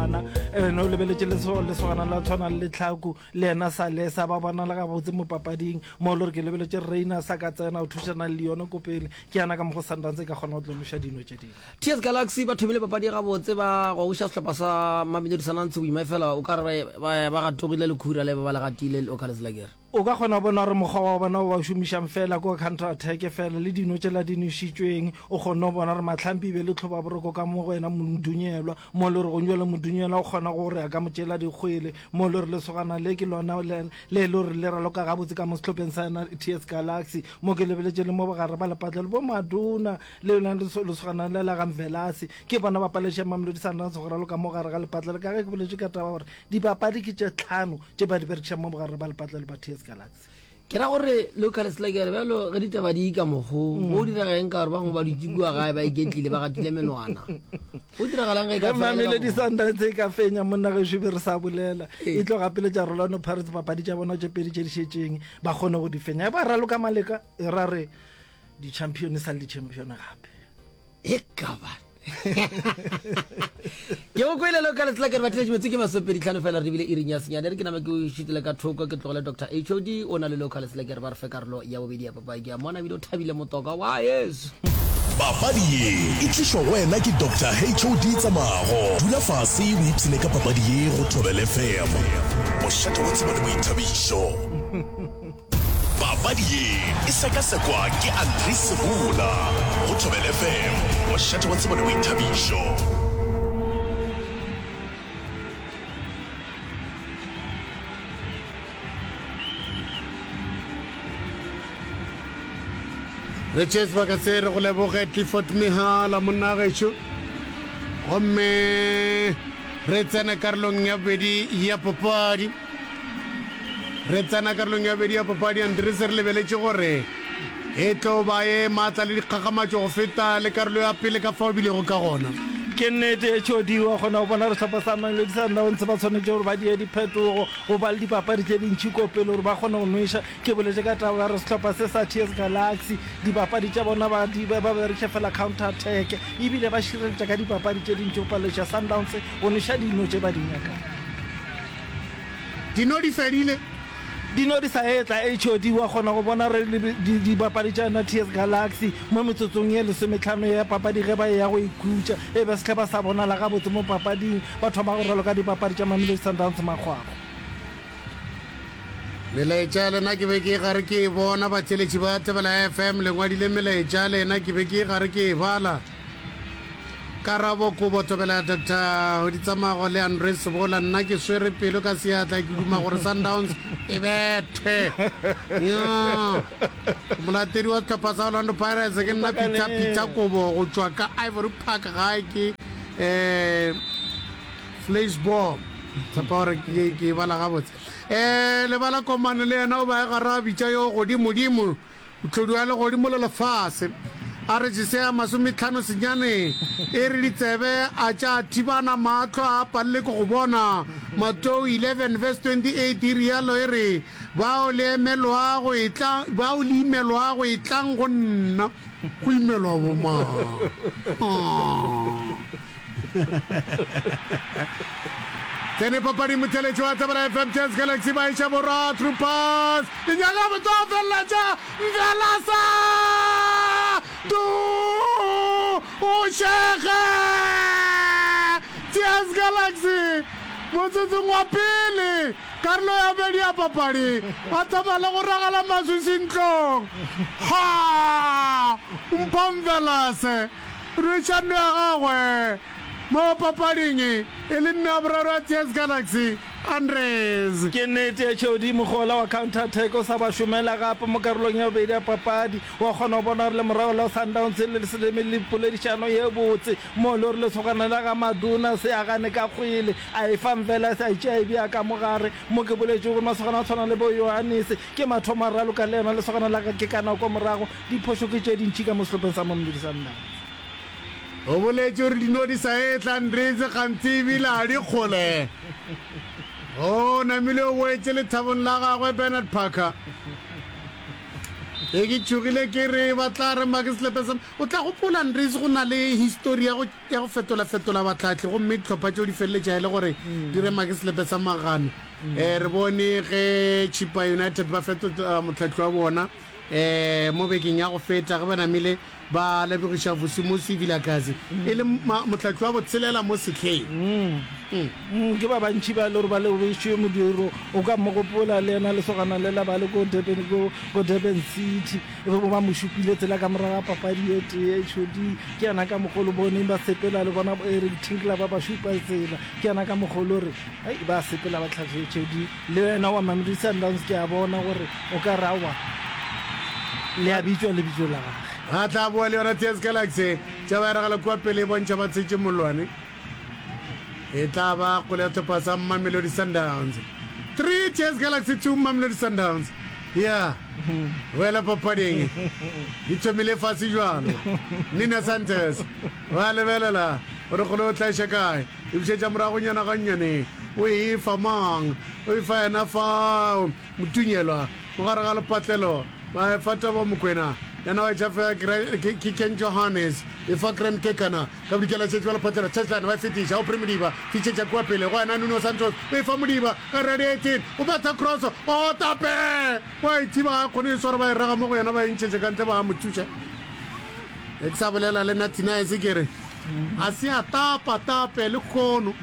bana eh, no lebeletse lesogana la tshwana le tlhaku le ena sale sa ba bonala gabotse mo papading mo le gore ke lebeletse reina sa ka tsena o thušana le yone ko pele ke yana ka mo go sundance e ka kgona go tlonoša dino tše dingwe ts galaxy ba thomile papadi gabotse ba gogoša sehlopha sa mamelodi sanantse boima e fela o ka re ba gatogile lekhura le ba ba le gatile le okaletselakere O ka kgona go bona gore mokgwa wa bona o ba o šomišang feela ke wa counter-attack fela le dino tšela di nwešitšweng. O kgonne go bona gore Mahlampi e be e le tlhobaboroko ka mo go ena Modunyelwa, mo e le gore gong bjale Modunyelwa o kgona go re a ka mo tšela dikgwele, mo e le gore lesogana le ke lona le e le gore le raloka gabotse ka mo sehlopheng sa yona TS Galaxy. Mo ke lebeletše le mo bogare ba lepatlelo, bo Maduna le lona lesogana le la ga Mvelase, ke bona ba palešang Mamelodi Sundowns go raloka mo gare ga lepatlelo. Ka ge ke boletše ka taba ya gore dipapadi ke tše tlhano, tše ba di berekišang mo bogarre ba lepatla le ba ts galaxy ke ra gore localist la kere bjalo ge ditaba di ka mokgo mm. o dirageng ka gore bangwe ba dutse kua gae ba iketlile ba gatile menwana o diragalang ge e mamele disantane tse e ka fenya monna ge šube re sa bolela ee. e tlo gapele tša rolano pirates papadi tša bona tše pedi tše di šetšeng ba kgone go di fenya e ba raloka maleka e ra re di-champion sa le di-champion gape e kaba ke go kwelelo ka letsela ke re batheletši metse ke masopedi tlhano fela re bile iring ya senyane re ke nama ke o šitile ka thoko ke tlogele dr hod o na le leo ka letsela ke re ba re fe karolo ya bobedi ya papadi ke a mona bile o thabile motoka wa yesu papadi ye e tlišwa go wena ke dr hod tsamago dula fase o ipshine ka papadi ye go thobele fm mošate wa tseba le boithabišo papadi ye e sekasekwa ke andri segola go thobel fm mošate wa tsebo le boithabišo re tšee sebaka se re go leboge clifford mehala monnageso gomme re tsena karolong ya bobedi ya papadi Re tsena karolong ya bobedi ya papadi ya Ndrese re lebeletše gore e tlo ba e matla le dikgakgamatšo go feta le karolo ya pele ka fao e bilego ka gona. Ke nnete, Jody, wa kgona go bona gore sehlopha sa Mamelodi Sundowns ba tshwanetše gore ba die diphetogo go ba le dipapadi tše dintši ko pele gore ba kgone go nwešwa. Ke boletše ka taba ya gore sehlopha se sa TS Galaxy dipapadi tša bona ba di ba ba berekiša fela counter attack ebile ba šireletša ka dipapadi tše dintši go palelešwa Sundowns go nwešwa dino tše ba di nyakang. Dino di fedile. Dino di sa etla, HOD wa kgona go bona re le dibapadi tša yona TS Galaxy mo metsotsong ye lesometlhano ya papadi ge ba eya go ikhutša e be sehleba sa bonala gabotse mo papading, ba thoma go raloka dibapadi tša Mamelodi Sundowns makgwakgwa. Melaetša lena ke be ke gare ke e bona, batheeletši ba Thebela FM le ngwadile melaetša lena ke be ke gare ke e bala. Karabo Kobo Thobela Doctor Ditsamago le Andre Sebola Nna ke swere pelo ka seatla ke duma gore Sundowns e bethe Nnyaa Molatedi wa sehlopha sa Orlando Pirates ke nna Peter Peter Kobo go tšwa ka Ivory Park gae ke um Fleisborg tshepa gore ke e bala gabotse um lebala komane le yena o ba e gara bitša yo godimodimo Tlhodu ya legodimo le lefase a re tšesea masometlhano senyaneng, e re ditsebe a tša thibana, mahlo a palelwe ke go bona. Matou 11 verse 28 e realo e re, Bao le emelwago etla, bao le imelwago etlang go nna. Go imelwa bomang? Tsene papadi motheletši wa Tabela FM Chess Galaxy ba iša borwa through pass e nyaka go tlo felela tša Mvelasa du o šega Chess Galaxy motsotsong wa pele karolo ya bedi ya papadi ba thoma le go ragela maswiši ntlong ha Mpho Mvelase Therišano ya gagwe mo papading e le mme wa boraro ya TS Galaxy, Andres. Ke nnete ya tšeodi, mohola wa counter attack o sa ba šomela gape mo karolong ya bobedi ya papadi. Wa kgona go bona gore le morago la Sundowns e le le se lemelle poledišano ye botse mo e le gore lesogana la ga Maduna se agane ka kgwele, a e fa Mvela a sa e tšea e bea ka mo gare. Mo ke boletšego gore masogana a tshwana le bo Ioannis ke mathomo a raloka le yena lesogana la ga Kekana kwa morago, Diphošo ke tše dintši ka mo sehlopeng sa Mamelodi Sundowns. O boletše gore dino di sa etla Ndridze gantsi e bile ga di kgole. O namile o boetše lethabong la gagwe Bernard Parker. Be ke tšhogile ke re ba tla rema ke selepe sa. O tla gopola Ndridze go na le histori ya go ya go fetolafetola batlhahli gomme dihlopha tšeo di feleletša e le gore di rema ke selepe sa magano. Re bone ge Chippa United ba fetola mohlahli wa bona. Mo bekeng ya go feta, ge ba namile ba lebogiša Vusimusi Vilakazi e le Mohlahli wa botshelela mo sehleng, ke ba bantši ba e le gore ba lebogišitšwe modiro o ka mo gopola le yena lesogana lela ba le ko Durban, ko Durban City, e be bo ba mo šupile tsela ka morago ga papadi e tee e tšhodi. Ke yana ka mokgwa o le boneng ba sepela le bona Eric Tinkler ba ba šupa tsela, ke yana ka mokgwa o le gore ba sepela ba tlhahletše di. Le wena wa Mamelodi Sundowns ke a bona gore o ka re aowa le a bitšwa lebitso la gage. Ba tla boa le yona TS Galaxy. Tša ba eragala kua pele e bontšha ba tshetše mollwane. E tla ba kgole ya sehlopha sa Mamelodi Sundowns. 3 TS Galaxy 2 Mamelodi Sundowns. Ya boela papading. Di thomile fase bjalo. Nina Santos ba lebelela gore kgole o tla iša kae. E bušetša moragonyana gannyane, o e fa mang? O e fa yena fao, Motunyelwa, mo gare ga lepatlelo. Ba e fa Taba Mokwena, yena wa e tšhafega Gra-, Ke Ken Johannes, e fa Grand Kekana, ka bodikela e šetše ba lepatlelo, Cheslane, ba e fetiša Aubrey Modiba, fišetša kua pele go yena Nuno Santos, o e fa Modiba, ka redi 18, o betha kroso, oo, Tape! Wa e thiba, ga a kgone e swara, ba e rega mo go yena, ba e ntšhetše ka ntle, ba a mo thuša. Ge ke sa bolela le Nathinais, ke re. A se a tapa, tape, lekhono,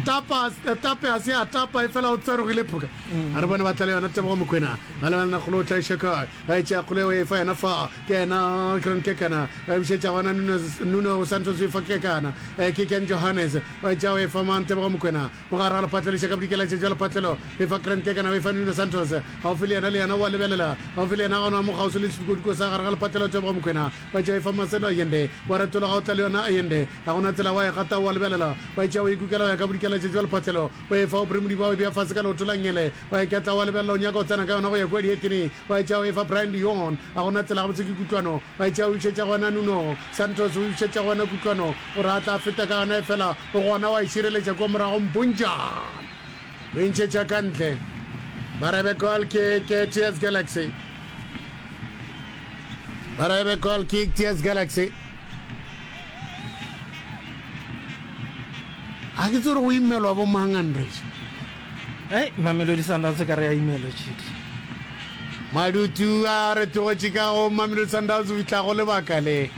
tapa, tape, a se a tapa, efela o tsarogile phoka. A re bone ba tla le yona Tebogo Mokwena, ba le banna kgolo o tla iša kae, a e tšea kgolo eo e fa yena fa, ke yena Gran Kekana, a e bušetša gona Nunes, Nuno Santos o e fa Kekana, e ke Ken Johannes, o e tšea o e fa mang, Tebogo Mokwena, mogare ga lephatlo le iša ka bodikeletše bja lephatlelo, o e fa Gran Kekana, o e fa Nuno Santos, gaufi le yena, le yena o a lebelela, gaufi le yena gona mo kgauswi le sedikodiko sa gare ga lephatlelo, Tebogo Mokwena, Ba tšhaifa maselo a yende, wa retola ga o tla le yona a yende, ga go na tsela wa e gata wa lebelela, wa e tšea wa e kukela go ya ka bodikeletša jwa lephatlelo, wa e fa o brimudi bwa go e bea fase ka leoto la ngele, wa e ketla wa lebelela o nyaka go tsena ka yona go ya kua dietene, wa e tšea wa e fa Brian Leon, ga go na tsela gabotse ke kutlwano, wa e tšea wa e bušetša go yena Nuno Santos, wa e bušetša go yena kutlwano, o re a tla feta ka yona efela o gona wa e šireletša kua morago Mpunjan. Re ntšhetša ka ntle. Ba rebe goal kick eh, TS Galaxy. Ba rebe goal kick TS Galaxy. A ke tsere go imelwa bo mang Andres? Hey, Mamelodi Sundowns ka re ya imelo chidi. Madutu a re tlogetše ka go Mamelodi Sundowns o fihla go lebaka le.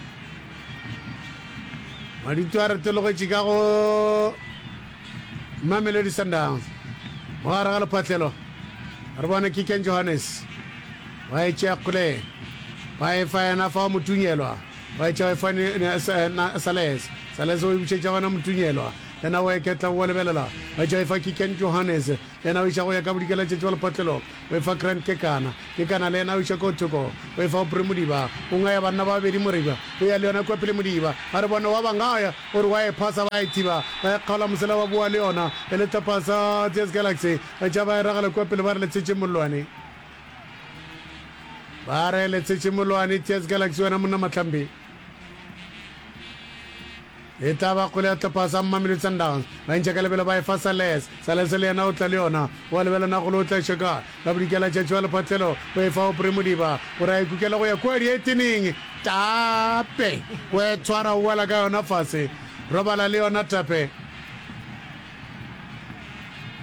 Madutu a re tlogetše ka go Mamelodi Sundowns mo gare ga lephatlelo, re bone Kiken Johannes ba e tšea kgole ba e fa yena fa Motunyelwa ba e tšea e fa Sales, Sales o e bušetša gona Motunyelwa yena o eketla o lebelela ba e tšea e fa Kiken Johannes, Yena o iša go ya ka bodikeletšetši wa lepatlelo, o efa Grant Kekana. Kekana le yena o iša kua thoko, o efa Aubrey Modiba. O ngaya banna ba babedi moriba, o ya le yona kua pele Modiba a re bona wa ba ngaya, o re wa e phasa, ba e thiba, ba e kgaola mosela ba bowa le yona e le tlhopha sa TS Galaxy. Ba tšea ba e ragela kua pele ba re letshetše mollwane. Ba re letshetše mollwane, TS Galaxy wena monna Mahlambi. E tla ba kgole ya tlhopasa Mamelodi Sundowns. Ba ntšha ka lebelo ba e fa Sales. Sales le yena o tla le yona. O a lebela na golo o tla šeka ka bodikela tšatši wa lephatlelo. O e fa Aubrey Modiba gore a e kukela go ya kua diethining. Tape! O e tshwara o wela ka yona fase. Robala le yona Tape.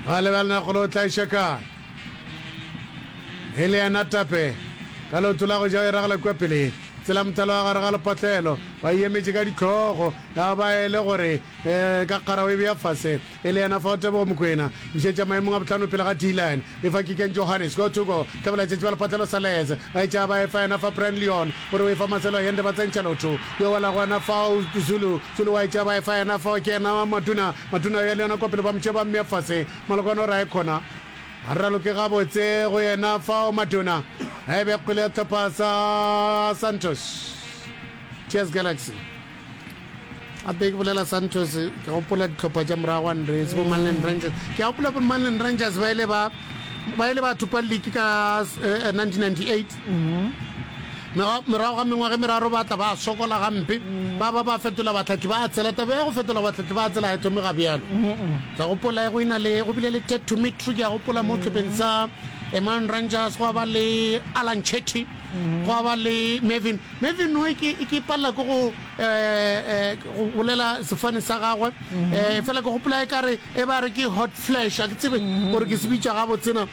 Ba lebela na golo o tla e šeka. E le yena Tape, ka leoto la go ja o iragela kua pele tsela mothalo wa gare ga lepatlelo, ba iemetše ka dihlogo, ya ba e le gore ee, ka kgara o e bea fase. E le yena fao Tebogo Mokwena, bušetša maemong a bohlano pele ga Dylan, e fa Kikeng Johannes, go to go, hlabolaetšatši ba lepatlelo Salez, ba etša ba e fa yena fa Brian Leon, o re o e fa Marcelo Allende ba tsentšha lotho, yo wela gona fao Zulu, Zulu wa etša ba e fa yena fao ke yena Maduna, Maduna yo le yena kua pele ba mo tšea ba mmea fase. Molokwane o ra e khona ga re raloke gabotse go yena fao matona a e be kgwele ya sehlopha sa Santos TS Galaxy. Gape ke bolela Santos ke gopola dihlopha tša morago wa Nresi bo Manland Rangers. Ke a gopola bo Manland Rangers ba ile ba ba ile ba thupa liki ka 1998. Eh, Morago ga mengwaga e meraro ba tla ba sokola gampe, ba ba ba fetola bahlahli ba tsela. Taba ya go fetola bahlahli ba tsela ga e thome ga bjalo. Ke a gopola ge go ina le go bile le Ted Tumitru, ke a gopola mo tshepeng sa Emmanuel Rangers, gwa ba le Alan Chetty, gwa ba le Mervyn. Mervyn o ke ke palela ke go go bolela sefane sa gagwe, fela ke gopola e ka re e ba re ke hot flash, a ke tsebe gore ke se bitša gabotsena.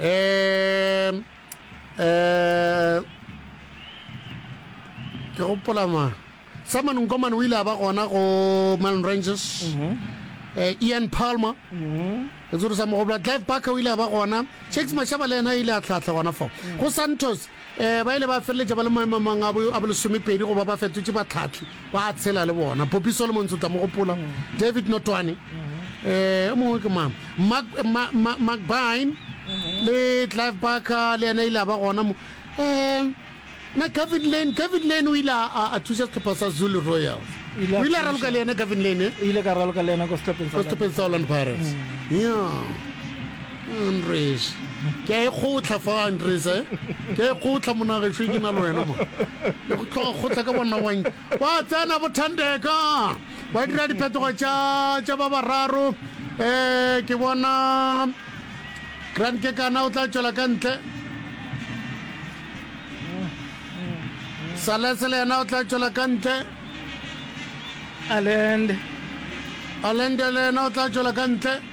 um ke gopola ma simon nkomane o ile a ba gona go melon ranges um ian palmer e tsere sa mogopla clive barker o ile a ba gona shakes mashaba le yena a ile a tlhahla gona fo go santos Ee, ba ile ba feleletša ba le maemomang a bolesomepedi go ba ba fetotše batlhahli ba a tshela le bona. Poppy Solomons o tla mo gopola, David Notwane, ee, o mongwe ke mang, Mark McBine le Clive Barker, le yena ile a ba gona mo. Ee, na Gavin Lane, Gavin Lane o ile a thuša sehlopha sa Zulu Royals. O ile a raloka le yena Gavin Lane, e? O ile ka raloka le yena ko sehlopeng sa Orlando Pirates. Mm. Yeah. Andres, ke a e kgotla fa, Andres, eh? Ke a e kgotla, monagešu, e ke na le wena mo. Le go tloga kgotla ka bonna wa nke. Ba tsena bothandeka, ba dira diphetogo tša tša ba bararo. Eh, ke bona Grant ke kana o tla tšwela ka ntle. Salese le yena o tla tšwela ka ntle. Alende. Alende le yena o tla tšwela ka ntle.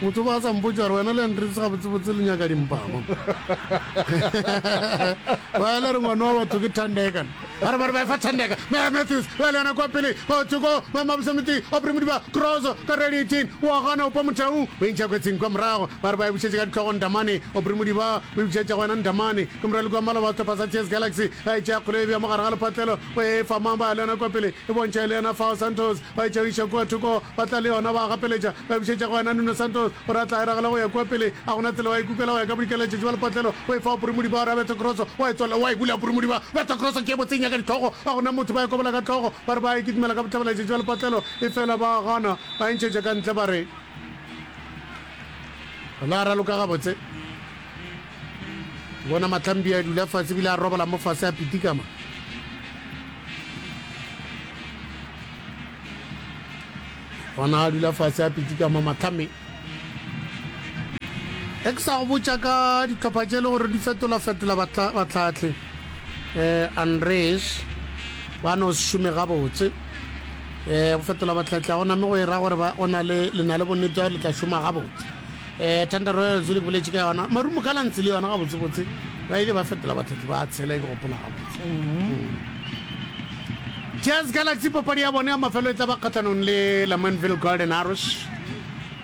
Motho o ba a sa mpotša gore wena le Andrews gabotsebotse le nyaka dimpama. Ba le re ngwana wa batho ke Thandeka. Ba re ba re ba efa Thandeka. Mea Matthews ba le yona kwa pele. Ba tsoko ba mabusamiti a Primodiba Cross ka redi 18 wa gana opa motau. Ba intšha kwetsing kwa morago. Ba re ba e bušetše ka ditlhogo Ndamane. O Primodiba ba e bušetša go wena Ndamane. Ke morali kwa maloba sehlopha sa Chess Galaxy. A e tšea kgolo e bja mo gare ga lepatlelo. Ba e fa mang ba le yona kwa pele. E bontšha e le yena Fao Santos. Ba e tšhabiša kua thoko, ba tla le yona, ba a gapeletša, ba e bušetša go wena, Nuno Santos. O re a tla eragela go ya kua pele. Ga go na tsela, wa e kukela, wa ya ka bodikela letšatši ba lepatlelo, o e fa wa Purumudiba, wa re a bethe kroso, wa e tswalela, wa e bula, Purumudiba, betha kroso, ke e botse, e nyaka dihlogo, ga go na motho, ba e kobola ka hlogo, ba re ba a e kitimela ka bohlabela letšatši ba lepatlelo, efela ba a gana, ba e ntšhetša ka ntle, ba re la raloka gabotse. bona matlambia a dula fase bile a robala mo fase a pitikama bona a dula fase a pitikama matlhame e ke sa go botša ka ditlhopha tše e le gore di fetolafetola batlhatlhe um eh, unres ba no se šome gabotse um go fetola batlhatlhe ga go name go e ra gore o na le lena le bonnete ya gore le tla šoma gabotse Eh, Thunder Royals o le boletše ka yona. Marumo Gallants le yona gabotsebotse ba ile ba fetola batlhaki ba tshela e ke gopola gabotse. Jazz Galaxy papadi ya bone ya mafelo e tla ba kgatlhanong le Lamontville Golden Arrows.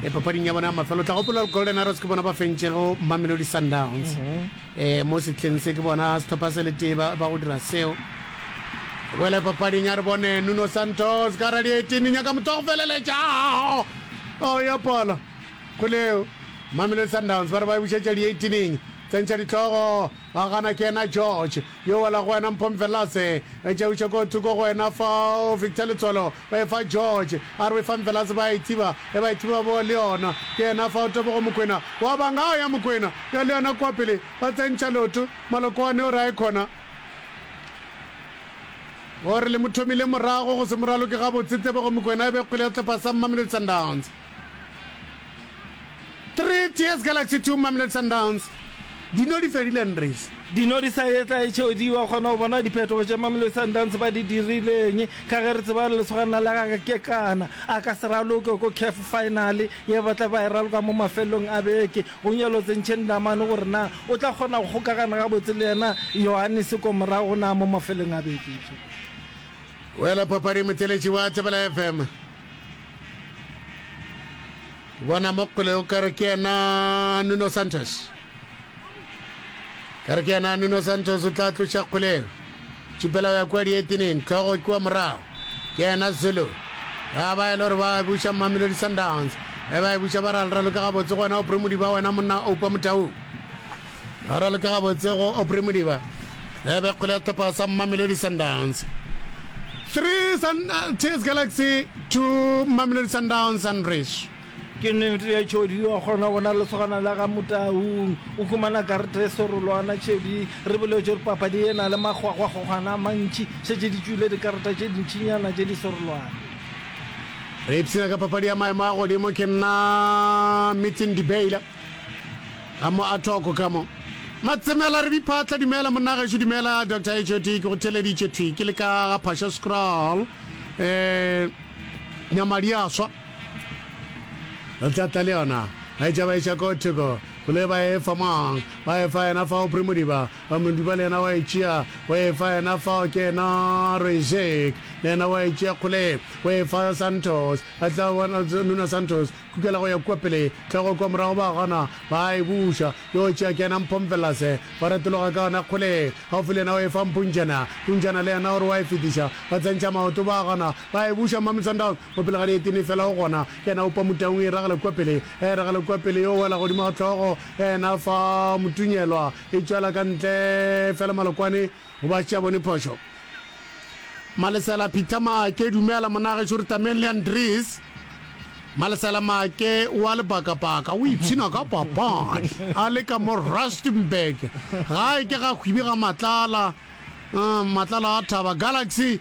E papading ya bone ya mafelo o tla gopola gore Golden Arrows ke bona ba fentšego Mamelodi Sundowns. Eh, mo setlheng se ke bona setlhopha se le tee ba ba go dira seo. Wele papading a re bone Nuno Santos ka radiating nyaka motho wa go feleletša. Oh, ya pala. Go leo, Mamelodi Sundowns ba re ba e bušetša dieitineng tsa ntšhadihlogo. Ga gana ke yena George, yo wela go wena Mpho Mvelase. Etša o iše ko thoko go wena fao Victor Letswalo, ba e fa George, a re o e fa Mvelase, ba e thiba, e ba e thiba bowa le yona. Ke yena fao Tebogo Mokwena wa banga, a ya Mokwena ya le yona kua pele, ba tsentšha leoto. Malokoane o re a e khona, o re le mo thomile morago, go se mo raloke gabotse Tebogo Mokwena, e be kgwele ya sehlopha sa Mamelodi Sundowns. Three Tears Galaxy Two Mamelodi Sundowns di no di fedile Ndries. Di no di sa etla e tšeo di wa kgona go bona diphetogo tše Mamelodi Sundowns ba di dirileng ka ge re tseba gore lesogana la ga Kekana a ka se raloke ko CAF final ye ba tla ba e raloka mo mafelelong a beke. Go nyolotse Nc'e Ndamane gore na o tla kgona go kgokagana gabotse le yena Yohannes ko morago na mo mafelelong a beke. Wela papading motheeletši wa Thobela FM. bona mo kgole o kare ke yena nuno santos kare ke yena nuno santos o tla tloša kgoleng tšupela ya kwa dieteneng tlhogo kua morago ke yena zulu ga ba e le gore ba buša mamelodi sundowns e ba e buša ba ralralo ka gabotse gona o premodi ba wena monna oupa motaung Ga ra leka gabotse go Aubrey Modiba. E be kgole ya tlopa sa Mamelodi Sundowns. 3 Sun Tears Galaxy to Mamelodi Sundowns Sunbridge. Ke nnete ya Chodi wa kgona go na lesogana la ga Motaung o humana karete e serolwana Chodi re boletše gore papadi e na le makgwakgwakgokgwana a mantši šetše di tšwile dikareta tše dintšinyana tše di serolwana. Re ipshina ka papadi ya maemo a godimo ke nna Meeting Debela. ga mo a thoko ka mo matsemela re diphatla dumela monnageso dumela dr hot ke go theleditše thwi ke le ka ga phasha scroll um eh, nyamadi a swa re tlatla le yona ga e tšaba eša ko thoko gole ba efa mang ba efa yena fao primodiba ba modiba le yena wa e tšea wa efa yena fao ke yena rezek le yena wa e tšea kgole wa efa santos a tla bona nuna santos Kukela go ya kua pele, tlhogo kua morago, ba gana, ba a e buša. Yoo, tšea ke yena mphomfelase. Ba retologa ka yona kgole, gaufi le yena, o e fa mpuntšhana. Puntšhana le yena o re o a e fetiša. Ba tsentšha maoto, ba gana, ba e buša. Mami Sundowns, mo pele ga dietine fela, o gona. Ke yena a upa motaung, e ragela kua pele, a e ragela kua pele, yo o wela godimo ga tlhogo ya yena fa Motunyelwa e tšwela ka ntle fela, Malokwane. Go ba tšea bone phošo. Malesela Peter Maake, dumela monna gešo re tameng le Andries. Malesela Maake wa lebakabaka o ipshina ka papadi a le ka mo Rustenburg gae ke ga hwibi ga matlala um, matlala a thaba Galaxy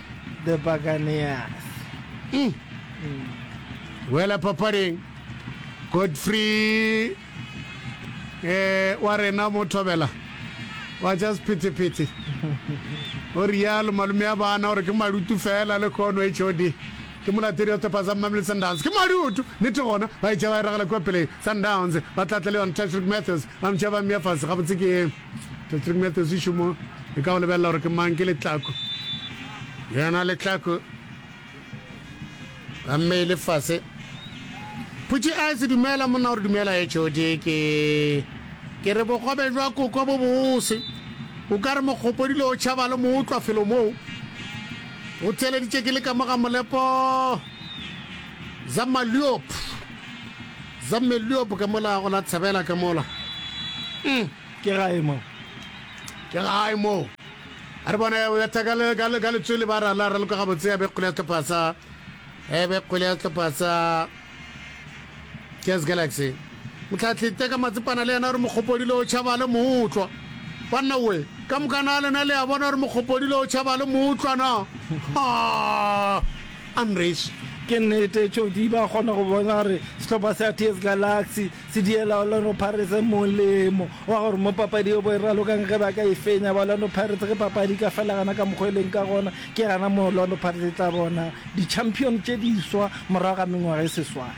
The Buccaneers. E wela papading. Godfrey eh, wa rena mo thobela wa ja sephetephete o rialo malume ya bana gore ke malutu fela le kono hod ke molatedi wa setlhopha sa mmamele sundowns ke malutu nete gona ba itšha ba e ragela kua peleng sundowns ba tlatla le yone tashrik matthews ba mtšha ba mmea fase gabotse ke Patrick Matthews šomo e ka go lebelela gore ke mang ke letlako yena letlako ka mme le fase phutši a se dumela monna gore dumela e tšhodi ke ke re bogobe jwa koko bo bose o ka re mokgopodile o tšhaba le mo utlwa felo moo o tseleditše ke le ka moga molepo za maliopo Za Melliop ka mola go la Tshabela ka mola. Umm. Ke gae mo. Ke gae mo. A re bona o betha ka le ka le ka letswele ba ra la ra loka gabotse ya be kgole ya sehlopha sa e be kgole ya sehlopha sa Jazz Galaxy. Motlhatlhi teka matsepana le yena gore mokgopodile o tšhaba le mootlwa. Banna we ka mokana lena le a bona gore mokgopodile o tšhaba le mootlwa na. Ha! Unreached. Ke nnete, Chody ba kgona go bona gore sehlopha sa TS Galaxy se diela Orlando Pirates molemo wa gore mo papadi yo bo e ralokang ge ba ka e fenya ba Orlando Pirates ge papadi e ka fela gana ka mokgwa e leng ka gona, ke gana mo Orlando Pirates e tla bona di-champion tše diswa morago ga mengwaga e seswai.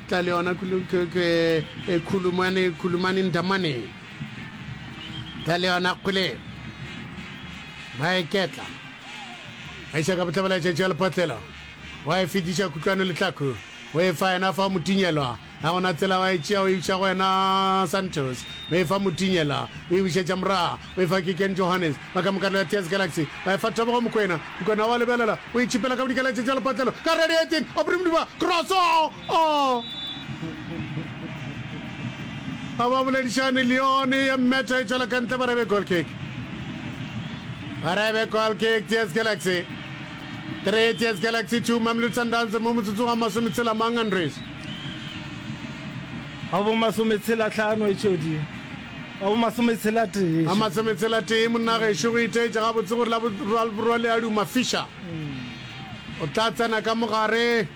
Tla le yona kulu, k, k, e, Khulumani, Khulumani Ndamani. Tla le yona kule. Ba e ketla. Ba iša ka bohlabela tšatši ya lepotlelo. Wa e fetiša kutlwano lehlaku. O e fa yena fa o mo tinyelwa. Ga go na tsela wa e tšea o e buša go wena Santos. O e fa mo tinyelwa. O e bušetša morago. O efa Gideon Johannes ba ka mo karolo ya TS Galaxy. Ba efa Tebogo Mokoena. Mokoena o a lebelela, o itšhipela ka go dikaletše tša lepatlelo. Ka radiating, Aubrey Modiba, cross! Ohh! Ga ba boledišane, Lyon ya mmetha e tšwela ka ntle, ba rebe goal kick. Ba rebe goal kick TS Galaxy. 3 TS Galaxy 2 Mamelodi Sundowns mo motsotsong wa masometshela mang Andries? Ga bo masometshela tlhano e tšodi. Wa bo masometshela-tee. Wa masometshela-tee, monna gešo, go itaetša gabotse gore la borwale a duma. Fischer o tla tsena ka mo gare.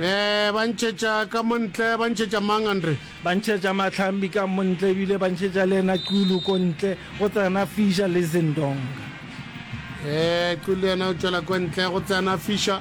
Ee, ba ntšhetša ka mo ntle. Ba ntšhetša mang, Andre? Ba ntšhetša Mahlambi ka mo ntle, ebile ba ntšhetša le ena Xulu ko ntle. Go tsena Fischer le Zindonga. Ee, Xulu yena o tšwela ko ntle. Go tsena Fischer.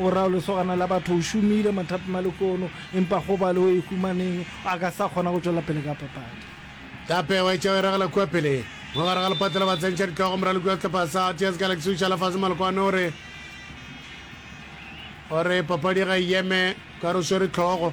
O ra o lesogana la batho o šomile mathapi malekono empa go ba le o e humaneng a ka sa kgona go tšwela pele ka papadi. Tape wa etša o eragela kua pele mo gare ga lepato la batsentšha ditlogo moraloki wa sehlopha sa Tears Galaxy o šala fase malekoano o re o re papadi ga e eme ka re o swere tlhogo.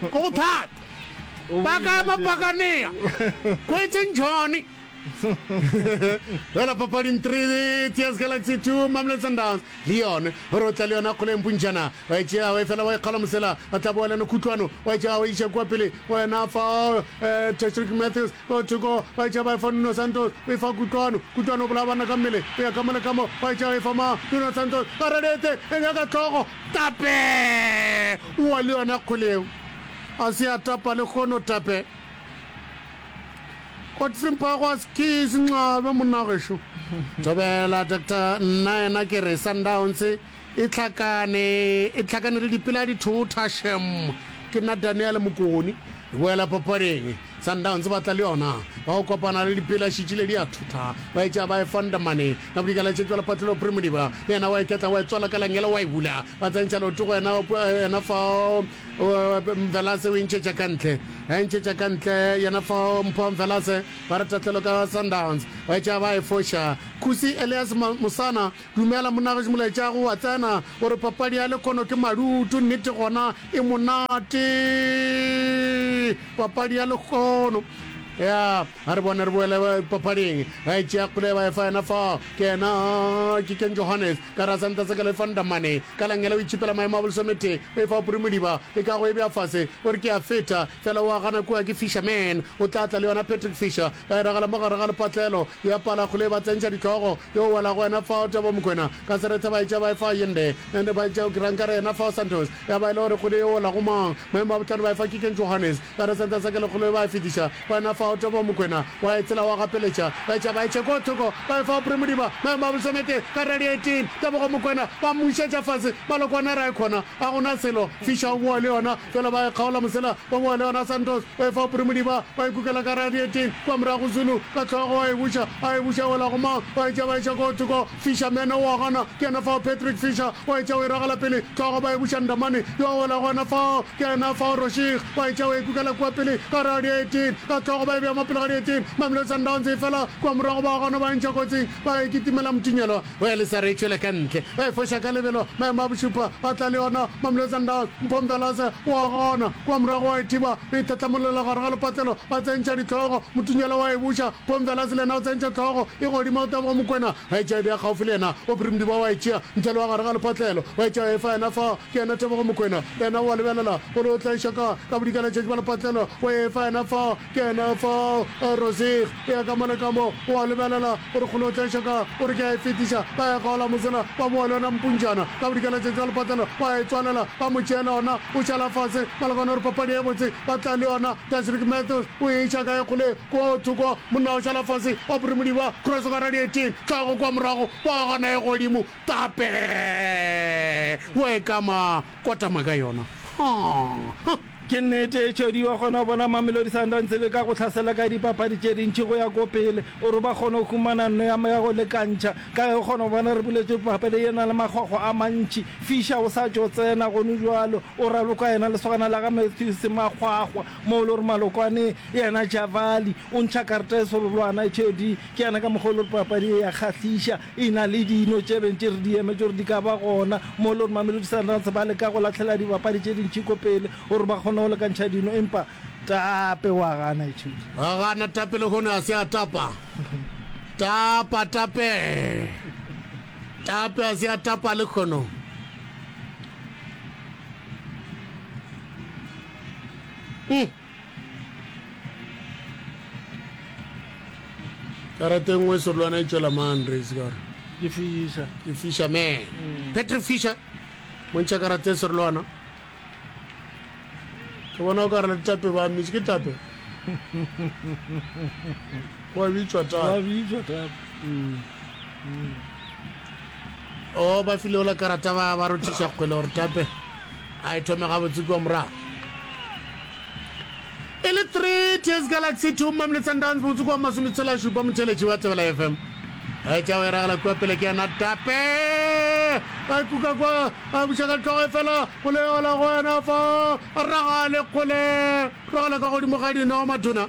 Go go thata. Ba ka ema Pakanea. Kwetseng Johnny. Fela papading three Tears Galaxy two Mamelodi Sundowns le yone gore o tla le yona kgoleng puntšana wa e tšea wa e fela wa e kgala mosela ba tla boa le yone khutlwano wa e tšea wa iša kua pele wena fa eh, Patrick Matthews o thoko wa e tšea ba e fa Nuno Santos o e fa kutlwano kutlwano o bolaya bana ka mmele o ya ka mole ka mo wa e tšea wa e fa ma Nuno Santos ba redete e nyaka tlhogo Tape! O wa le yona kgole yeo. A se a tapa lehono, Tape. Otsimpagwas ke senxabe, monna gešo. Thobela, Doctor, nna yena ke re Sundowns e hlakane, e hlakane le dipela dithotha, shem. Ke nna Daniel Mokoni. Re boela papading. Sundowns ba tla le yona ka go kopana le Dipela šitši le di a thotha ba e tšea ba e fonda mane ka bodikela tše bjalo Patlelo Primodiba le yena wa e ketla wa e tswala ka langela wa e bula ba tsentšha leoto go yena yena fao Mvelase o e ntšhetša ka ntle a e ntšhetša ka ntle yena fao Mpho Mvelase ba re tatlelo ka Sundowns ba e tšea ba e foša Khusi Elias Mosana Dumela monagetši molaetšago wa tsena o re papadi ya lekhono ke madutu nnete gona e monate papadi ya lekhono ya a re bone re boele papading ba e tšea kgole ba e fa ena fa ke ena ke ken johannes ka ra santa se ka le fandamane ka langele o itšhipela maemo a bolesomete o e fa oporomodiba le ka go e bja fase o re ke a feta fela o a gana kua ke fisherman o tla tla le yona patrick fisher ba e ragela mo gare ga lepatlelo ya pala kgole ba tsentšha ditlogo Yo wela go yena fao Tabo Mokwena ka serethe ba etša ba e fa Yende and ba etša ke rang ka re yena fao Santos ya ba e le gore kgwedi e wela go mang maemo a bohlano ba e fa Kikeng Johannes ka re Santos a ke lekgolo e ba e fetiša go yena fao Tabo Mokwena wa e tsela wa gapeletša ba etša ba etše ko thoko ba e fa Aubrey Modiba maemo a bolesome tee ka re Radiating Tebogo Mokwena ba mmušetša fase Malokwane a re a e kgona Ga go na selo. Fischer o boa le yona, fela ba e kgaola mosela, ba boa le yona Santos, ba e fa Opry Modiba, ba e kukela ka radieteng, kua morago Zulu, ka hlogo, a e buša, a e buša e wela go mang, ba etša, ba etša koo thoko, Fischer mene o a gana, ke yena fao Patrick Fischer, o etša o e ragela pele, hlogo, ba e buša Ndamane, yo a wela gona fao, ke yena fao Roshig, ba etša o e kukela kua pele ka radieteng, ka hlogo ba e bea mo pele ga dieteng, Mamelodi Sundowns e fela kua morago, ba gona ba e ntšha kotsing, ba e kitimela Mtunyelwa. Go ya lesa re tšwela ka ntle. Ba e foša ka lebelo. Maemo a bošupa a tla le yona. Mamle Sundowns, Mpho Mdlalase o a gona. Kua morago wa e thiba. Re itlhatlamolela gare ga lepatlelo. Ba tsentšha dihlogo. Motunyela wa e buša. Mpho Mdlalase le yena o tsentšha hlogo e godimo. Tebogo Mokwena a e tšea e bea gaufi le yena. Aubrey Mdiba wa e tšea ntle le wa gare ga lepatlelo. Wa e tšea wa e fa yena fao. Ke yena Tebogo Mokwena. Le yena o a lebelela gore o tla e xa kae. Ka bodikela tšatši ba lepatlelo. Wa e fa yena fao. Kena fa eh, Rosig, ya ka mole ka mo, o a lebelela, o re kgolo o tla šaka, o re ke a e fetiša, ba ya kgaola mosela, ba boa le yona mpuntšana, ka bodika la tšatši la lepatlela, ba e tswalela, ba mo tšeela ona, o šala fase, ba lekana gore papadi ye botse, ba tla le yona, Dasrick Matthews, o e iša kae kgole, kua o thoko, monna o šala fase, ba puri modiba, cross ka radiating, tlhago kua morago, ba gana e godimo, tape, wa e kama, kotama ka yona, ha, ha. Ke nnete, Cody wa kgona go bona Mamelodi Sundowns e leka go hlasela ka dipapadi tše dintši go ya ko pele, o re ba kgone go humana nno ya ya go lekantšha. Ka ge o kgona go bona re buletše papadi ye na le makgwakgwa a mantši. Fischer o sa tšo tsena gono bjalo, o raloka yena lesogana la ga Mathews makgwakgwa, moo e le gore Malokwane yena Javali o ntšha karta e sololwana. Cody ke yena ka mokgwa o le gore papadi ye ya kgahliša. E na le dino tše beng tše re di emetše gore di ka ba gona, mo le gore Mamelodi Sundowns ba leka go lahlela dibapadi tše dintši ko pele gore ba kgone go lekantšha dino, empa Tape o a gana. Ithute. Wa gana Tape lehono a se a tapa. Tapa Tape. Tape a se a tapa lehono. Mm. karate nngwe serolwana e tšwela man race kare ke fisha ke fisha man mm. patrick fisha montšha karate serolwana ke bona o ka re le tape ba mmise ke tape wa bitswa tape mm. mm. O ba file ola karata ba ba rothiša kgwele gore tape a e thome gabotse kua morago. E le three Tears Galaxy two Mamelodi Sundowns botse kua masometshela šupa motheletši wa Thebela FM. E tša o eragela kua pele ke yena tape a e kuka kwa a buša ka tlhogo e fela go le ola go wena fa ragale kgole ragale ka godimo ga dino matona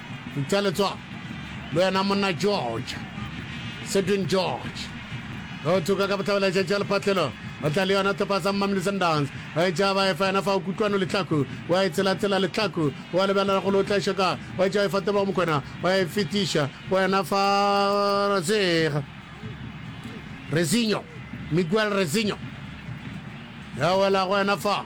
Ntšha letsogo le wena monna George. Sedwin George o thuka ka bohlabela tšatši ya lephatlelo o tla le yona topa sa Mmamli Sundowns o e tšaba e fa yena fa o kutlwano letlaku wa e tselatsela letlaku wa lebelela go le o tla šoka wa e tšaba e fa tebogo mokwena wa e fetiša wena fa razega Rezinho Miguel Rezinho ya wela go wena fa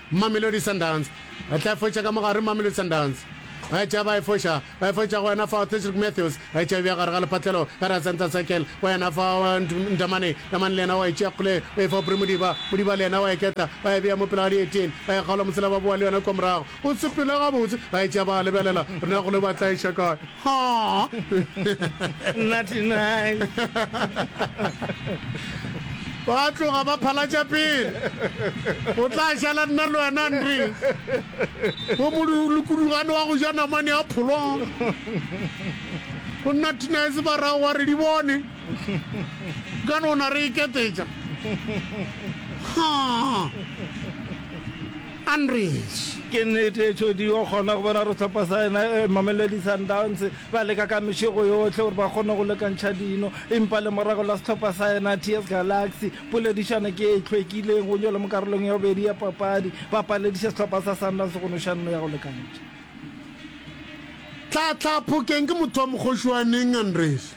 Mamelodi Sundowns e tla e foša ka mo gare, Mamelodi Sundowns e tšea ba e foša, ba e foša go wena fao, Cedric Matthews e tšea e bea gare ga lepatlelo ka ra center circle go wena fao, Nd, Ndamane, Ndamane le yena wa e tšea kgole o e fa Aubrey Modiba, Modiba le yena wa e ketla ba e bea mo pele ga Dietien, ba e kgaola mosela ba boa le yona kua morago, o sepela gabotse, ba e tšea ba a lebelela, na gole ba tla e ša kae? Ba tloga ba phalatša pele. O tla šala nna le wena, Andre. Wo molukudugane wa go ja namane ya pholo. Go nna Tinese ba rago wa re di bone. Ka no na re iketetša. Ha! Unreach. Ke nnete e tšhodiwa gona go bona gore sehlopha sa yena Mamelodi Sundowns ba leka ka mešego yohle gore ba kgone go lekantšha dino empa lemorago la sehlopha sa yena TS Galaxy poledišano ke e hlwekileng go nyolwa mo karolong ya bobedi ya papadi ba palediša sehlopha sa Sundowns go no šanno ya go lekantšha. Tlhatlha phokeng ke motho wa Mokgošoaneng, Unreach.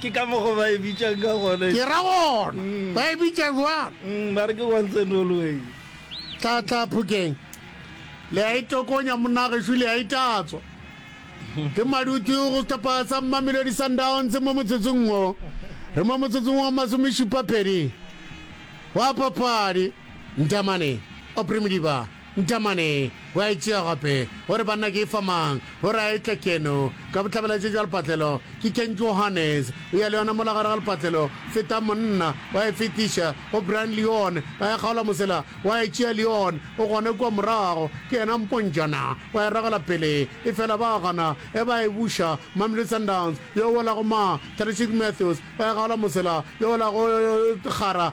Ke ka mokgo ba e bitšang ka gona. Ke ra gona, ba e bitša bjang? Mm, ba re ke once and always. Tla, tla, Phokeng. Le a e tokonya, monna gešo, le a e tatswa. Ke madutu go sehlopha sa Mamelodi Sundowns mo motsotsong wo. Re mo motsotsong wa masomešupa-pedi wa papadi. Ntamane, Aubrey Modiba. Ntamane o a e tšea gape, o re, Banna, ke e fa mang? O re, A e tle keno. Ka bohlabela tše tša lepatlelo, ke Ken Johannes. O ya le yona mola gare ga lepatlelo. Feta, monna. O a e fetiša go Brian Leon. O a e kgaola mosela. O a e tšea Leon. O gona kua morago. Ke yena mpontšana. O a e ragela pele. Efela ba a gana. E ba a e buša. Mamelodi Sundowns. Yo o wela go ma, Tadishic Mathews. O a e kgaola mosela. Yo o wela go Kgara.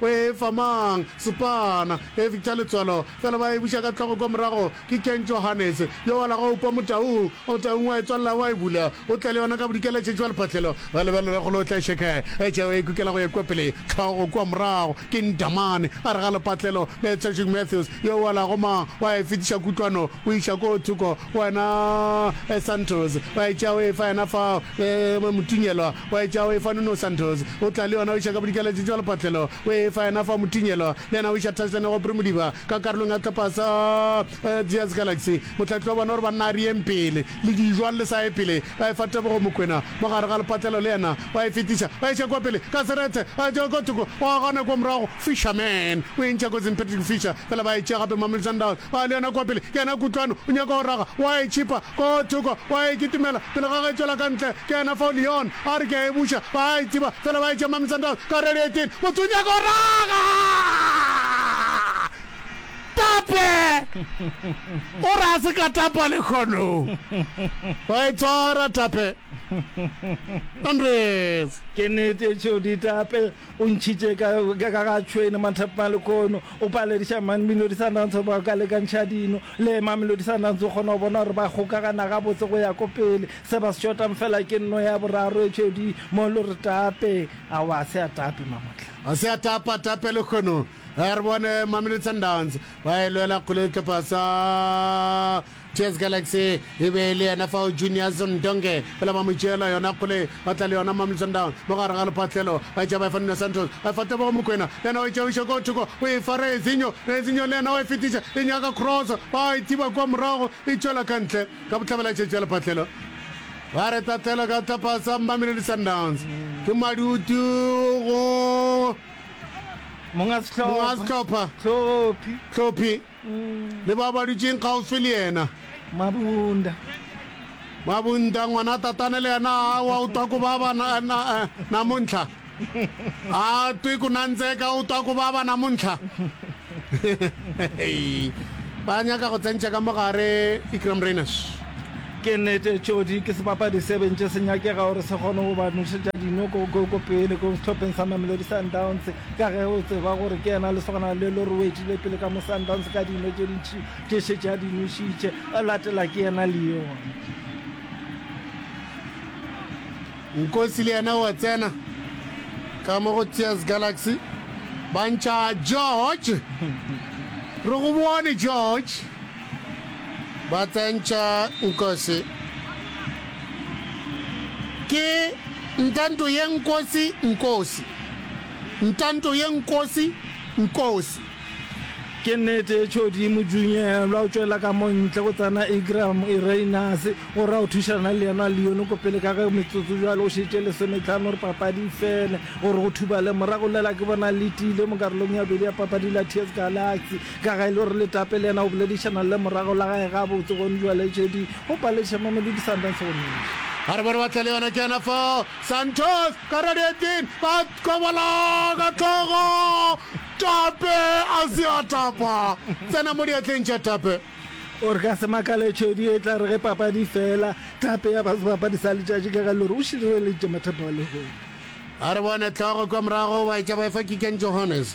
O e fa mang? Sepana. Eupša letswalo fela ba e buša ka hlogo kua morago. Ke Ken Johannes, yo wa la go kwa motaung. Motaung wa e tswalela wa e bula. O tla le yona ka Bodikela letšatši wa lephahlelo. Ba lebelela go lo tla šeka e tšeo e kukela go ya kua pele, hlogo kua morago. Ke Ndamane, a re ga lephahlelo, le Tshwešeng Mathews, yo wa la go mang, wa e fetiša kutlwano go iša koo thoko go wena, Santos. Ba e tšea o e fa yena fao, le Motunyelwa. Wa etša o efa Nuno Santos, o tla le yona o iša ka bodikeletše tšwa lepatlelo, o e efa yena fa Mutinyelo, le yena o iša touchline go Aubrey Modiba ka karolong ya tlapas a Diaz Galaxy. Mohlahli wa bona o re banna a re yeng pele le dijo, a lle sa ye pele, ba efa Tebogo Mokwena mo gare ga lepatlelo, le yena wa e fetiša, ba iša kua pele ka serethe, a etša ka thoko, wa gana kua morago, Fischer, Man, o e ntšha kotsing Patrick Fischer, fela ba e tšea gape Mamelodi Sundowns, ba le yona kua pele, ke yena Kutlwano, o nyaka go raga, o a e tšhipa ko thoko, o a e kitimela pele ga ge e tšwela ka ntle, ke yena fao Lyon a re ke a e buša, ba a e tsiba, fela ba e tšea Mamelodi Sundowns ka redi 18, motho o nyaka go raga! Tape! O re a se ka tapa lekhono! Wa e tshwara Tape! Andries! Ke nete Jody Tape O ntšhitše ka ka ga tšhwene mathapma le kono, o palediša Mamelodi Sundowns gore ba ka lekantšha dino. Le Mamelodi Sundowns o kgona go bona gore ba kgokagana gabotse go ya ko pele. Se ba se šotang fela ke nno ya boraro e tšhwedi mo lo re tape. Aowa, a se a tape Mamotla. A se a tapa, tape le kono. Re bone Mamelodi Sundowns ba e lwela kgole dihlopha sa TS Galaxy e be e le yena fao Juniors Ndonge pela ba mo tšeela yona kgole ba tla le yona Mamelodi Sundowns mo gare ga lephatlelo ba e tšea ba e fa Nuno Santos ba e fa Tebogo Mokoena le yena o e tšea o iša ko thoko o e fa Rezinho Rezinho le yena o e fetiša e nyaka cross ba e thiba kwa morago e tšwela ka ntle ka bohlabela tše tša lephatlelo ba re tatlhelo ka tlhopha sa Mamelodi Sundowns ke madutu go monga sehlopha tlhophi le bao ba dutšeng kgaufsi le yena. Mabunda. Mabunda, ngwana tatane le yena a wa o twa ku baba na, na, namuntlha. A twi ku nandzeka o twa ku baba namuntlha. ba nyaka go tsentša ka mogare Ikram Rayners. Ke nete Tšodi ke sebapadi se bentše se nyakega gore se kgone go ba nošetša dino ko, ko, ko pele ko sehlopheng sa Mamelodi Sundowns. Ka ge o tseba gore ke yena lesogana le le robetšile pele ka mo Sundowns ka dino tše dintši tše šetše a di nwešitše, a latela ke yena Leon. Nkosi le yena o a tsena ka mo go Tears Galaxy, ba ntšha George. Re go bone George. ba tsentša nkosi ke ntanto ye nkosi nkosi ntanto ye nkosi nkosi Ke nnete e tšhodi mojunyelwa o tšwela ka mo ntle go tsena Igram Ireinase o ra o thušana le yena Leone ko pele ka ge metsotso jwale o šetše lesometlhano gore papadi e fele gore go thubale morago lela ke bona letile mo karolong ya bobedi ya papadi la TS Galaxy Ka ga e le gore Letape le yena o boledišana le morago la gae gabotse, go Ndlwaletšedi, go Palesa, Mamelodi Sundowns go Mmiša. Ba re bone ba tla le yona ke yena fao, Santos ka radiating, ba kobola ka hlogo, Tape a se a tapa, tsena mo diatleng tša Tape. O re ka se makale tšhwedi e tla re ge papadi e fela, Tape ya ba sebapadi sa letšatši ka ga e le gore o šireleditše mathata wa lehono. Ba re bone hlogo kua morago, ba etša ba efa kikeng Johannes.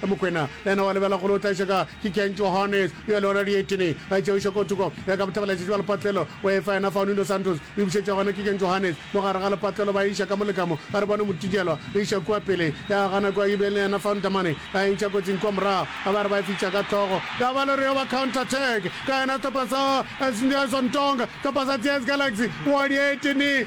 Ge Mokwena le yena wa lebela go lo tlaiša ka, ke Ken Johannes yo le gona Dietine a e tšeoša ko thoko ya ka bothabela tšatši ba lepatlelo o efa yena Faunie Dos Santos e bušetša gona ke Ken Johannes mo gare ga lepatlelo ba e iša ka mo le ka mo a re bone Motitielwa e iša kua pele ya gana kua Yibeng le yena Faunie Tamane a e ntšha kotsing kua morago a ba re ba e fitša ka hlogo ya ba le re yo ba counter attack ka yena sehlopha sa Sndyaison Tonga sehlopha sa TS Galaxy wa Dietine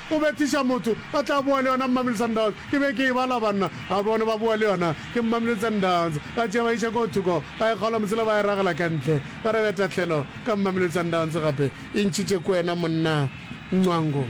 O bethiša motho, a tla boa le yona Mmamile Sundowns, ke be ke e bala banna, a bone ba boa le yona, ke Mmamile Sundowns, ba tšea ba iša koo thoko, ba e kgaola mosela ba e ragela ka ntle, ba re beta tlhelo ka Mmamile Sundowns gape. E ntšhitše ko wena monna Ncwango.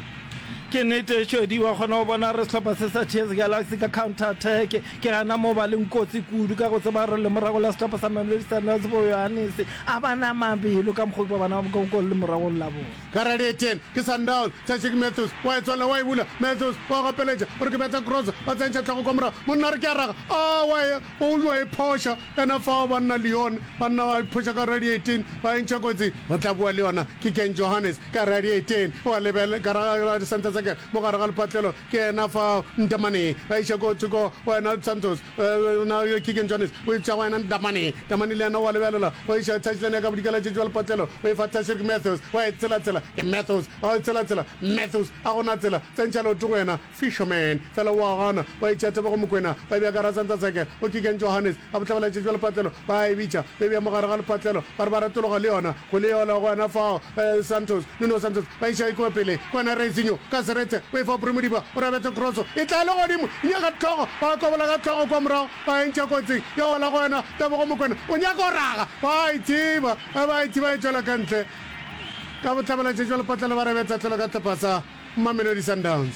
Ke nete Shodi, wa kgona go bona re sehlopha se sa Chess Galaxy ka counter attack, ke gana mo ba leng kotsi kudu ka go tseba gore lemoragong la sehlopha sa Mamelodi Sundowns bo Yohanese a ba na mabelo ka mokgwa o ke ba bonang ka goal lemoragong la bona. Garali Etienne, ke Sundown, Tshashik Mathews, wa e tswalela, wa e bula, Mathews, wa gapeletša, o re ke betha cross, ba tsentšha tlhogo kwa morago, monna a re ke a raga, aa, wa e, o o yo e phoša, ena fao banna Lyon, banna ba e phoša Garali Etienne, ba e ntšha kotsing, re tla bua le yona, ke Ken Johannes, Garali Etienne, o a lebel, Garali Santasaker, mo gare ga lepatlelo, ke ena fao, Ntamaneng, ba iša ko thoko, wa ena Santos, Yona Keegan Jones o e tšea go yena Ndamane. Ndamane le yena o a lebelela, o e šaya touchline ya ka bodikela tše jwale potlelo, o e fa Tashreeq Mathews, o a e tsela-tsela ke Mathews, o a e tsela-tsela Mathews, a go na tsela, tsentšha leoto go yena Fisherman, fela o a gana, o a e tšea Tebogo Mokoena, o e bea ka Razantza Zeke, go Keegan Johannes, a bohlabela tše jwale potlelo, ba a e bitša, o e bea mo gare ga lepotlelo, ba re ba ratologa le yona, go le yola go yena fao Santos, Nuno Santos, Ba iša e tloga pele kwa Narezinho. Ka seretse o e fa Bry Modiba, o rabetsa kroso e tla legodimo, e nyaka hlogo, ba a kobola ka hlogo kwa morago, ba e ntšha kotsing ya go wela go yona. Tebogo Mokwena o nyaka go raga, ba a e thiba, ge ba e thiba e tšwela ka ntle ka bohlabela. Tšetšwa lepatlelo ba rebetsa tlholo ka hlopa sa Mamelodi Sundowns.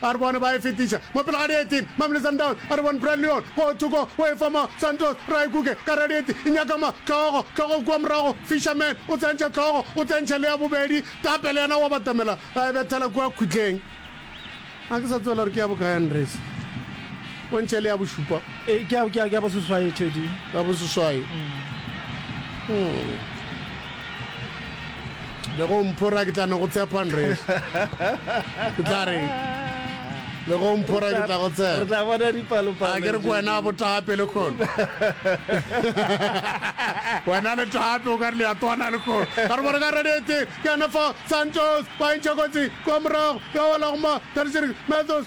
A re bona ba e fetiša mo pele ga Dieti, Mamelodi Sundowns. A re bona Bradley Yoon ko thoko o e fa mo Santos, Raikuke ka Radieti e nyaka ma Tlhogo, Tlhogo kua morago, Fisherman o tsentšha Tlhogo, o tsentšha le ya bobedi, Tapele yena o a batamela a e bethela kua khutleng. Ga ke sa tseba le gore ke ya bokae, Andries. Pontšhe le ya bošupa. E, ke ya, ke ya, ke ya boseswai, Teddy. Ya boseswai. Hmm. Le go mphora ke tla no go tshepa nres. Ke tla re le go mphora ke tla go tshepa. Re tla bona dipalopalo. A ke re ko wena a botaga pele kgono. Wena le tape o ka re le ya twana le kgono. Ka re bone ka redete ke yona fa Santos ba e ntšha kotsi kwa morago ya wela go ma Tadisiri Mathos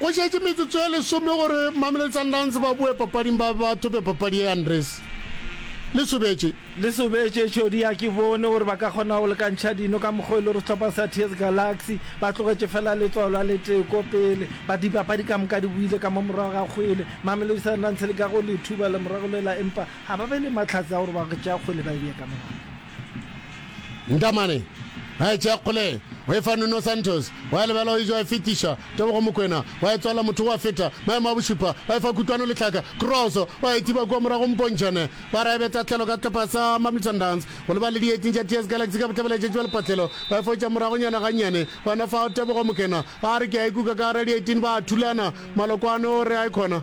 Go šetše metsotso e lesome gore Mamelodi Sundowns ba boe papading ba be ba thope papadi ye, Andries Lesobetše. Lesobetše, Tšhodi ya ke bone gore ba ka kgona go lekantšha dino ka mokgwa o e le gore sehlopha sa TS Galaxy ba tlogetše feela letsogo la letee ko pele. But dipapadi ka moka di boile ka mo morago ga kgwele. Mamelodi Sundowns e leka go le thuba lemoragolwela empa ga ba be le mahlatse a gore ba go tšea kgwele ba e bee ka morago. Ntamane a e tšea kgole, o e fa Nuno Santos, wa e lebela o e ja e fetiša, Tebogo Mokwena wa e tswala motho wa feta, Maemo a bošupa wa e fa Kutlwano Letlhaka, cross wa e thiba kua morago Mpontšhane wa ra e beta tlhelo ka sehlopha sa Mamelodi Sundowns go lebala le dieteng tša TS Galaxy ka bohlabela tšatši wa lepatlelo wa e fotša moragonyana gannyane, gona fao Tebogo Mokwena a re ke a e kuka ka gare ga dieteng ba thulana, Malokoane o re a e khona.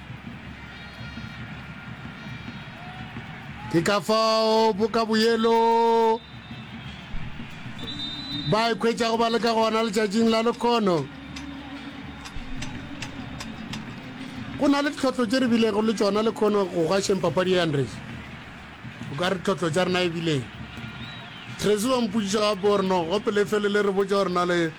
ke ka fao boka boyelo ba ikhwetšago ba le ka gona letšatšing la lekgono go na le ditlhotlho tše re bilego le tsona le kgono go gašeng papadi ya andres o ka re tlhotlho tša rena e bileng tracy wa mpotšiša gape gore no gope le fele le re botša gore na le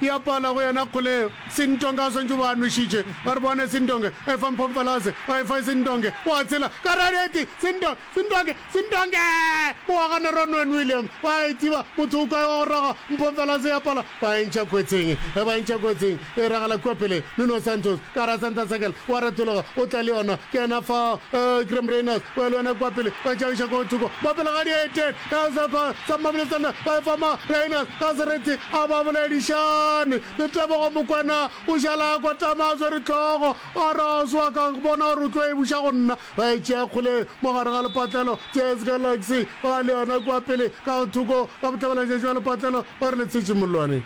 Ya pala go yena kgole Sintonge a swantšwe o ba a nwešitše. Ba re, Bone Sintonge, efa Mphomfelase, o efa Sintonge, o a tshela. Ka re, Areti! Sinto-, Sintonge! Sintonge! O a gana Ron Wen William, ba a itiba, motho o kae wa go roga Mphomfelase? Ya pala ba e ntšha kotsing. Ge ba e ntšha kotsing, e iragala kua pele, Nuno Santos, ka gare ga center circle, o a retologa, o tla le yona, ke yena fao, Graham Reynolds, o ya le yona kua pele, ba tšabiša ko thoko, ba pele ga dieteng. Ka sefa sa Mablesana ba efa ma Rainers ka sereti a ba boledišane. Letebogo Mokwena o šala a kotama a swere hlogo a re a swa ka bona gore o tlo e buša go nna. Ba e tšea kgole mo gare ga lepatlelo. Jazz Galaxy ba le yona kua pele ka thoko ga bohlabela-tšatši bja lepatlelo ba re le tshetše mollwane.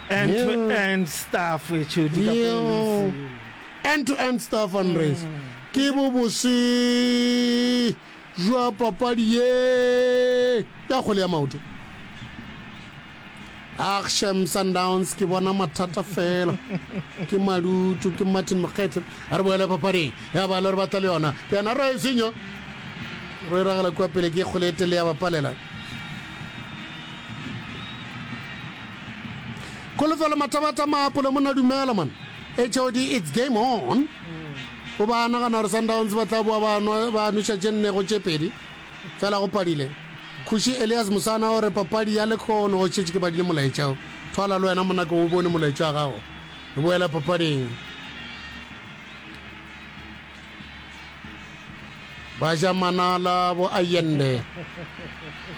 End to end stuff, Tshodi ka polisi. End to end stuff Andres. Ke bo bose jwa papadi ye ya kgwele ya maoto. Ag shem Sundowns ke bona mathata fela. Ke madutu ke Martin Mokgethwe. A re boele papading. Ya ba le re batla le yona. Ke yena re senyo. Re ragala kwa pele ke kgwele e tele ya bapalela. Kholofelo matabata maapole mona dumela man. HOD it's game on. O ba nagana gore Sundowns ba tla boa ba nwa- ba nweša tše nne go tše pedi. Fela go padile. Kgoši Elias Musana o re papadi ya lekgono o šetše ke badile molaetša o. Thwala le wena monako o bone molaetša wa gago. Re boela papading. ba ja manala bo ayende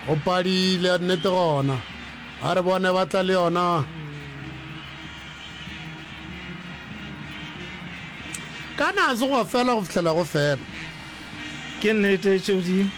go padile ya nnete gona a re bone ba tla le yona kana a se go fela go fihlela go fela ke nnete tšeo di